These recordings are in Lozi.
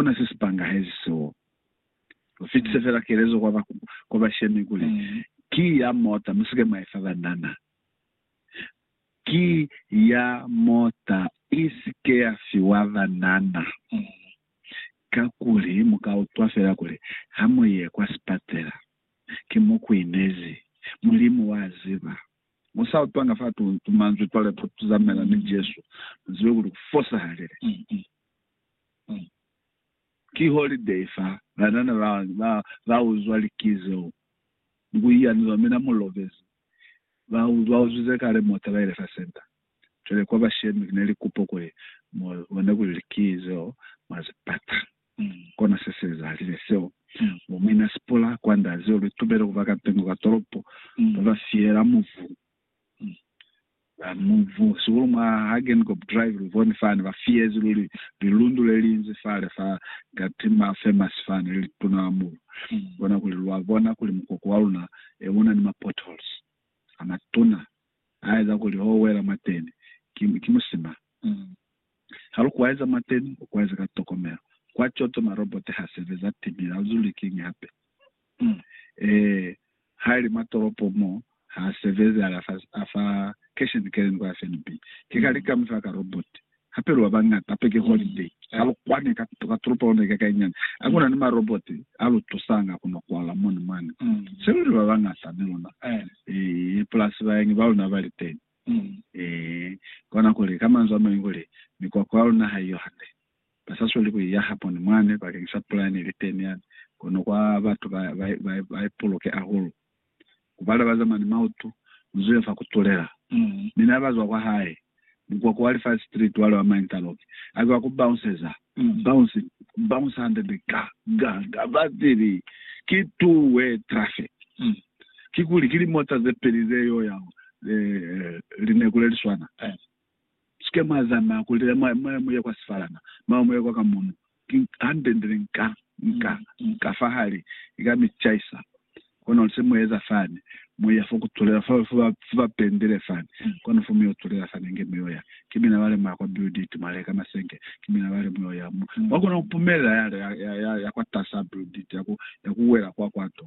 Hakuna se si pangahezi seo. Lu fitise fela kelezo kwa kwa bashemi kuli, Ki ya mota, mu si ke mwa i fa banana. Ki ya mota, i si ke ya fiwa banana. Kakuli mu ka utwa fela kuli, Ha mu ye kwa sipatela, ki mo ku inezi. Mulimu wa ziba. Mu sa utwanga fa tuntu manzwi cwale ku tuzamela ni Jesu, mu zibe kuli ku fosahalile. Ki holiday fa banana ba ba ba uzwa liki zeo ni ku iyanuzwa. Mina mu lovezi ba ba uzwize kale mota ba ile fa center. Cwale kwa bashemi kina li kupo kuli mu bone kuli liki zeo mwa zi pata. Kona se se ezahalize seo. Bo mina Sipula kwanda zeo lu itubele kuba ka ntengo ka tolopo ba ba fiyela muvumo. Mubu, sihulu mwa Hagenkop Drive, luboni fani ba fiyezi luli lilundu lelinzi fale fa Gatti ma famous fani le lituna hahulu. Kona kuli lwa bona kuli mukoko wa luna e una ni ma potholes amatuna aeza kuli ho wela mwateni ki, ki musima. Ha lu kwaeza mwa teni, u kwaeze ka tokomelo. Kwa coto, marobote ha sebeza timili, ha lu zuli kiñi hape. Um. Ee, ha li mwa tolopo mo, ha a sebezi, a li afa, afa kesheni keleni kwa FNB. Ki kale ki ka mu fa ka robote. Hape lu ba bañata, hape ki holiday. Ha lu kwane ka, ka tolopo ya luna ye kakainyana. Ha ku na ni marobote a lu tusanga ku no kwala moni mwani. Se lu li ba bañata ni luna. Ee, pulasi bañi ba luna ba li teni. Ee, kona kuli, ka manzwi a mañi, kuli mikwakwa ya luna haiyo hande. Ba sa sweli ku i yaha poni mwani bakeng sa pula yene ili teni yani, kono kwa batu ba, ba, ba, ba i puluke hahulu. Ku bale ba zamani mautu, mu zibe fa ku tulela. Mi na ba zwa kwa hae, mukwakwa wa Lifazi Street wale wa ma interlock, a zwa ku bounceza, bounce, ku bounce hande nde, ga, ga, ga, ba tili, Ki tuwe traffic. Kikuli ki limota ze peli ze yo ya lineku le li swana. Sike mwa zamaya kuli le mwa, mwa, mu ye kwa sifalama, mwa, mu ye kwa ka muno. Ki hande ndi li nka, nka, nka fa hali ka mi caisa. Kono luse mu eza fani, mu ya fo ku tulela, fo, fo ba, fo ba pendile fani. Kono fo mu yo tulela fani inge mu yo ya. Ki mina bale mwa ya kwa builditi, mwa leka masenge. Ki mina bale mu yo ya. Mu, mwa kona ku pumelela ya, ya, ya, ya, ya kwatas'a builditi, ya ku, ya ku wela kwa, kwa to.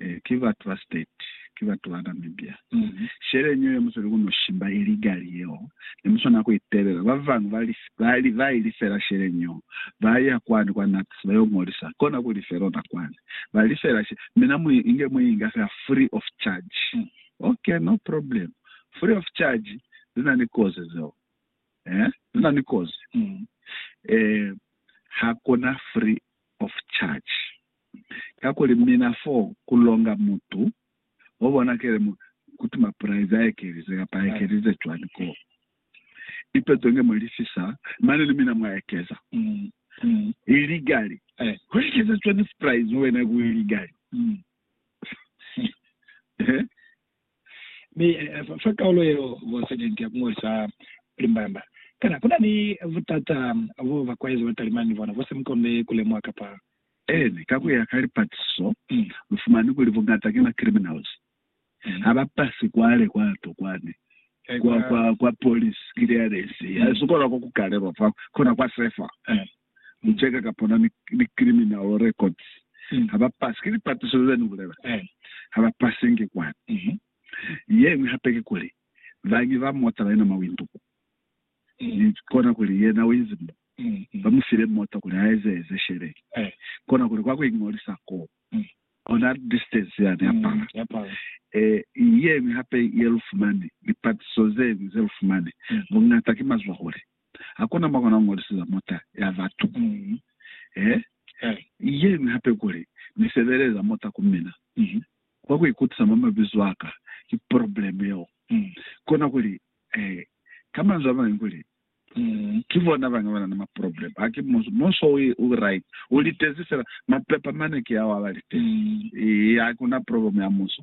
Eh, ki ba trusted, ki batu ba Namibia. Sheleñi yo yemuseli ku no shimba illegally yeo, ne mu swanela ku itelela. Ba bañwi ba li, ba li, ba ilifela sheleñi yo, ba ya kwani kwa NAPS, ba yo ngolisa, kona ku lifela ona kwani. Ba lifela she, mi na mu inge, mu inga fela free of charge. Ok, no problem. Free of charge, zi na ni kozi zeo. Eh, zi na ni kozi. Eh, ha ku na free of charge. Kakuli mina fo ku longa mutu o bonakele mo kuti mapulaize a ekelize kapa a ekelize cwani ko ipeto nge mu lifisa, mane ni mina mwa ekeza. Iligali. Ku ekeza cwani pulaize wena ku iligali? Mi fa kaulo yeo bo sajenti ya kungolisa limbamba. Kana kuna ni butata bo bakwaezi ba talimani ni bona bo sa mikonde kulemuha kapa? Eeni, ka kuya ka lipatiso, lu fumani kuli buñata ki ma criminals. Ha ba pasi kwale kwa to kwani kwa, kwa, kwa police clearance, ha si kona ku kalelwa fa kona kwa sefa. Lu cheka ka pona ni, ni criminal records. Mm. Ha ba pasi. Ki lipatiso ze ni bulela. Eh. Ha ba pasi nge kwani. Mm -hmm. Yeñwi hape ki kuli, bañwi ba mota ba ina mawindu ku. Mm. Ni kona kuli yena o inzi mo. Mm -hmm. Ba mu file mota kuli a eze eze sheleni. Eh. Kona kuli kwa ku ingolisa ko. Mm. Ona distance ya ne apala. Mm. Yapala. Eh, yeñwi hape ye lu fumani, lipatiso zeñwi ze lu fumani, mm. bungata ki mazwahule. Hakuna mwa kona kuñoliseza mota ya batu kuli, He, he, yeñwi hape kuli, Ni sebeleza mota ku mina. Kwa kuikutisa mwa mabizo aka, ki probleme yeo. Kona kuli, he, ka manzwi amañwi kuli, Ki bona bañi bana ni maprobleme. Ha ki munso. Munso u, u right. U litezi fela. Mapepa mane ki ao abalitezi. Eya, hakuna probleme ya munso.